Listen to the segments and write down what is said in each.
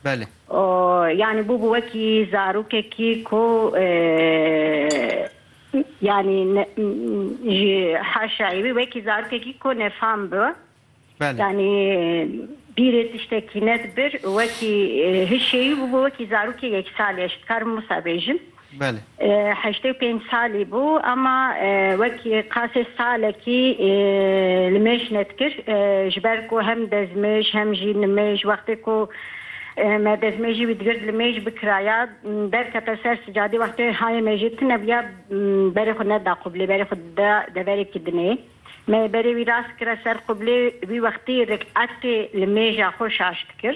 Belê. Û yanî bûbû wekî zarokekî ku yanî ji haşayê wî wekî zarokekî ku nefam bi. Belê. Yanî bîrê tiştekî nedibir û wekî hişê wî bûbû wekî zarokê yek salî. Ez dikarim wisa bêjim. Belê. Heştê û pênc salî bû ema wekî qasê salekî li mêj nedikir ji ber ku hem dezmêj hem jî nimêj wextê ku me dezmêjî wî digird li mêj bikiraya derkete ser sicadê wextê hayê me jî tune bûya berê xwe neda qublê berê xwe dida deverekî dinê me berê wî rast kire ser qublê wî wextî riketê li mêja xwe şaş dikir.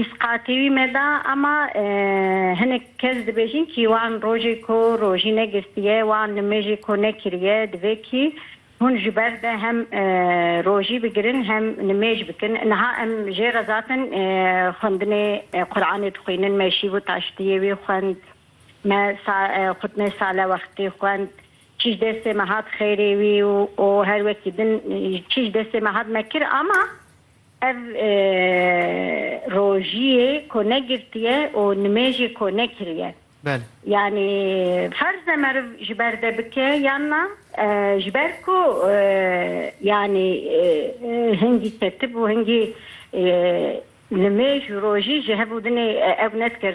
Îsqatî wî me da ema hinek kes dibêjin kî wan rojê ku rojî negistiye wan nimêjê ku nekiriye divê kî hûn ji ber de hem rojî bigirin hem nimêj bikin niha em jê rezatin xwendinê Quranê dixwînin me şîv û taştiyê wî xwend me xwitnê sale wextî xwend çi ji destê me hat xêrê wî û her wekî din çi ji destê me hat me kir ema Ev rojiyê ku ne girtiye û nimêjê ku ne kiriye. Belê. Yanî ferz e meriv ji ber de bike yan na? Ji ber ku yanî hingî ketib û hingî nimêj û rojî ji hev û dinê ew ne dikir.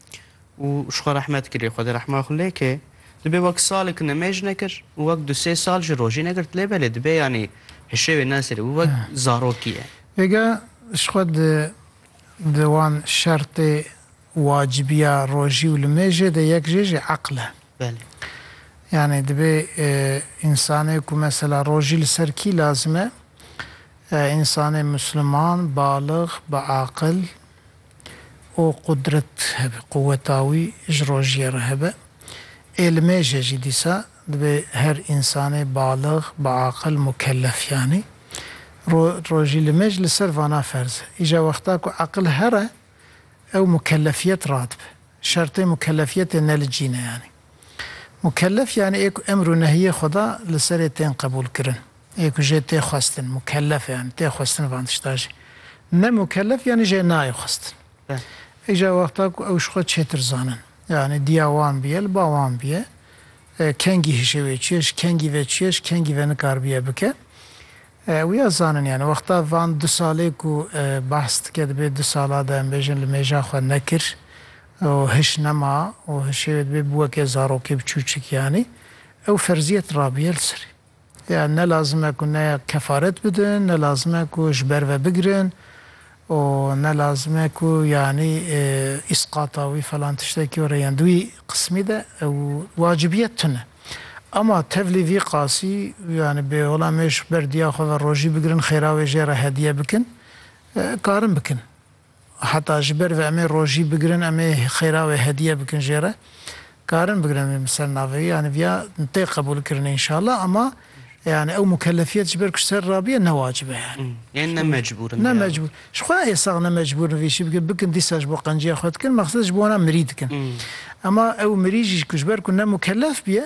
û ji xwe rehmet kiriye, Xwedê rehma xwe lê ke, dibê wek salik nimêj nekir û wek du sê sal jî rojî negirt lê belê dibê yanî hişê wê neserê û wek zarokî ye. Êga ji xwe di di wan şertê wacibîya rojî û nimêjê de yek jê jî eql e. Belê. Yanî dibê însanê ku mesela rojî li ser kî lazim e? Însanê musliman, balix, bi aqil, û qudret hebe, quweta wî ji rojiyê re hebe. Ê li mêjê jî dîsa dibê her însanê balix, biaqil, mukellef yanî ro rojî li mêj li ser vana ferz e. Îja wexta ku eqil here ew mukellefiyet radibe. Şertê mukellefiyetê ne li cî ne yanî. Mukellef yanî ê ku emr û nehiyê Xweda li serê tên qebûlkirin. Ê ku jê tê xwestin, mukellef e yanî tê xwestin van tişta jî. Ne mukellef yanî jê nayê xwestin. Îcar wexta ku ew ji xwe çêtir zanin. Yanî diya wan bûye li ba wan bûye. Kengî hişê wê çi ye, ji kengî ve çi ye, ji kengî ve nikaribiye bike. Ew ya zanin yanî. Wexta van du salê ku behs dike dibê du sala de em bêjin li mêja xwe nekir. û hiş nema û hişê wê dibê bi weke zarokê bi çûçik yanî ew ferziyet rabîye li serê ya ne lazim e ku ne kefaret bidin ne lazim e ku ji ber ve bigirin û ne lazim e ku yanî îsqata wî falan tiştekî were yan di wî qismî de ew wacibiyet tune ama tevlî vî qasî yanî bi hola me ji ber diya xwe ve rojî bigirin xêra wê jê re hediye bikin karin bikin. Heta ji ber vê em ê rojî bigirin, em ê xêra wê hediye bikin jê re. Karin bigirin vê min ser navê wî, yanî viya tê qebûlkirinê înşallah ema yanî ew mukelefiyet ji ber ku ji ser ra bûye ne wacib e yanî. Yên ne mecbûr in. Ne mecbûr. Ji xwe ê sax ne mecbûr in vê şî bikin. Bikin dîsa ji bo qenciya xwe dikin, mexsed ji bo wan a mirî dikin. Ema ew mirî jî ku ji ber ku ne mukelef bûye,